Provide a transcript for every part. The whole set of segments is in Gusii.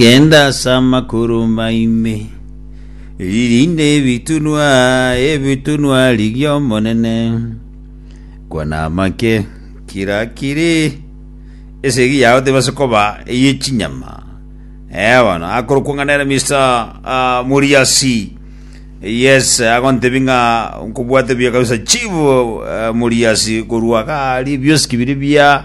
Genda ase amakoro maime, ririnde ebitunwa ebitunwa riria Omonene. Kwana amake, kira kiri esegi yao tebase koba eye chinyama. Eh, bono akorokwa ng'a nere Mister ah, Muriasi. Yes, agontebi ng'a nkobwate buya kabisa Chief eh, Muriasi korwa gari biosi kibiri bia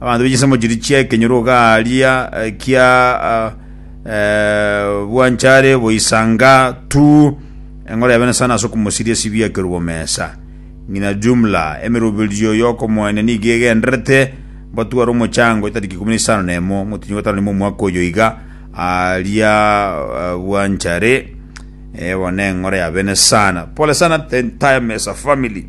Abanto be chinsemo chiria chi'ekenyoro gaaria kia bwanchare boisanga tu eng'ora ya bene sana ase okomosiria esibio ya ekerubo mesa. Ng'ina jumla, emeroberio y'okomoenia nigo egendererete mbatware omochango etariki ikomi na isano na emo motienyi bwa gatano na imo omwaka oyo iga aaria bwanchare. Eye bono neng'ora ya bene sana. Pole sana the entire Mesa family.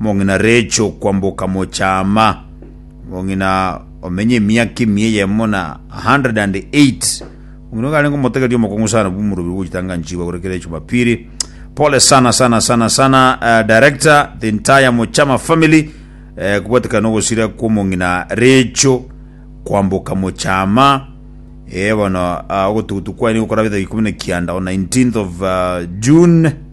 Omong'ina Recho kwamboka mochaama, omong'ina omenya emiaka emiya eyemo na 108, omong'ina ogarenge omotegeria omokong'u sana bw'omorobio bw'ogochitanganchigwa gore kera echumapiri. Pole sana sana sana sana uh, director the entire mochama family uh, kubwatekana nogosira kw'omong'ina Recho kwamboka mochaama eh, bono uh, ogotugutu kwaye nigo korabete ikomi na kianda on 19th of uh, June